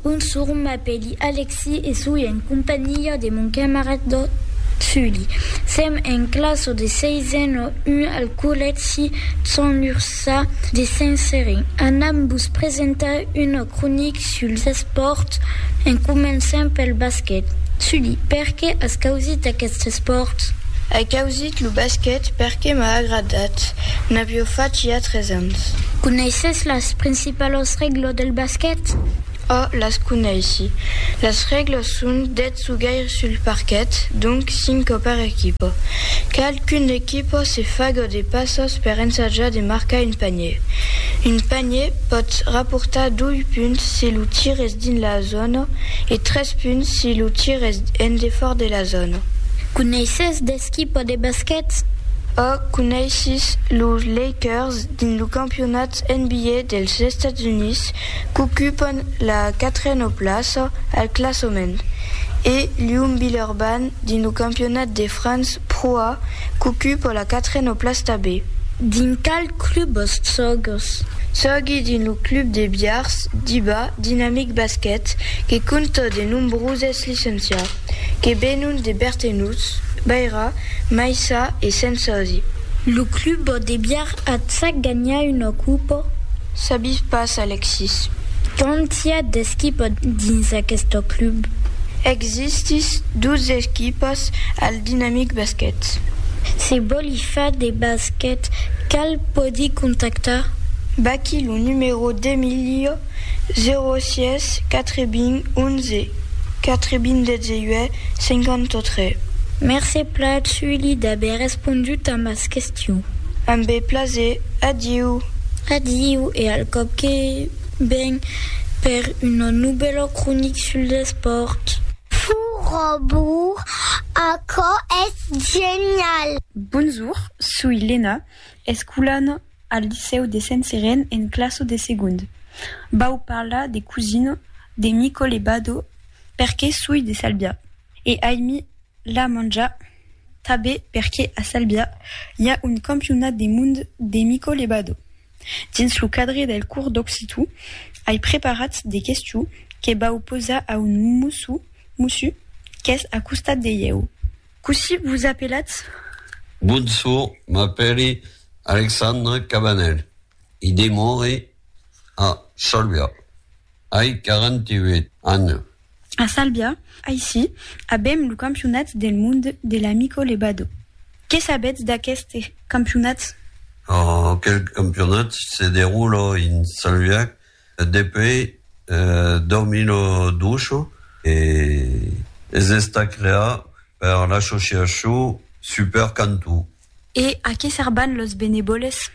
Bonsour, m'apèli Alexi e soi en companhiá de mon camarad Sully. Sèm en classa de seisen a un al collègi Sant Ursà de Saint-Serin. Anam vos presentar una cronica suls espòrts en començant pel basquet. Sully, perqué as causit aquest espòrt? Ai causit lo basquet perqué m'a agradat, n'avió fach ja tres ans. Coneisses las principalas Pas las règlas del basquet? Ò, las coneissi. Las règlas son, dètz jogaires sul parquet, donc cinco per equipa. Cal qu'una equipa se faga de passas per ensajar de marcar un panier. Un panier pòt raportar dois punts si lo tir es dins la zòna e tres punts si lo tir es en defòrt de la zòna. Coneisses d'esquipa de basquet? Ò, coneissis los Lakers dins lo campionat Las NBA dels Estats Units qu'ocupan la quatrena plaça al classament e Lyon-Villeurbanne dins lo campionat de France Pro A qu'ocupa la quatrena plaç tabé. Dins qual club vos sògues? Sògui dins lo club de Biars, Diba, Dinamic Basket, que compta de nombroses licencias, que venon de Bertenuts, Baira, Maissa e Sensòsi. Lo club vò debiar atsac ganhar una copa? Sabís pas, Alexis. Quand i a d'esquipas dins aqueste club? Existís dos esquipas al Dinamic Basquet. Se vòli far de basquet, cal pòdi contactar? Vaquí lo numero d'Emilio. 06 80 11 98 53. Mercé Plat Sully d'aver respondut a mas questions. Amb be plaser. Adiu. Adiu e al còp que ven per una novèla cronic sul despòrt. Furobur, aquò es genial! Bonjour, soi Lena, escolan. al licèu de Sent-Seren en classo de segond. Vau parlar de Cusino, de Nicole Bado, perque soi de Salbia. E aimi la manja tabe perque a Salbia i a un campionat de mond de Nicole Bado. Dins lo cadre del cors d'occitu, ai preparat de questions que vau posar a un mossu qu'es a costat de ieu. Cossí vos apelatz? Bonsour, m'apèli Alexandre Cabanel e demore a Salbia. Ai 48 ans. A Salbia, aicí, avèm lo campionat del monde de l'Amico Lebado. Qué sabètz d'aqueste campionat? Aquel campionat se derula en Salbia Depuei 2012 es estat creat per l'associacion Super Cantó. E a qué serban los benevòles?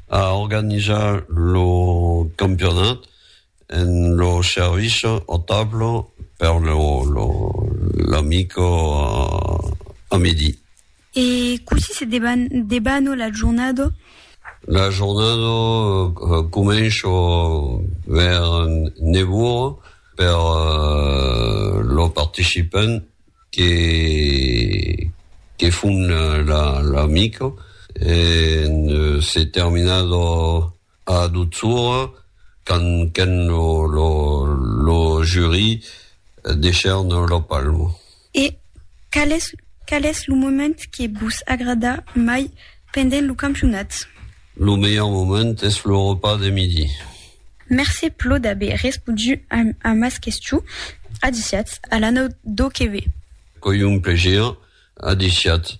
A organizar lo campionat en lo servici au tableau per l'amic a midi. E cossí se debano la jornada? La jornada comença vers nèu ora per lo participant que que fon la mica e se terminada A Dutsoura, quand qu'en lo jury deishèron lo palmo. E qual es lo moment que vos agrada mai pendent lo campionat? Lo melhor moment es lo repas de midi. Mercé plo d'aver respodu a mas questions. Adiciatz, a l'anau do que ve. Qu'oi un plaisir. Adiciatz.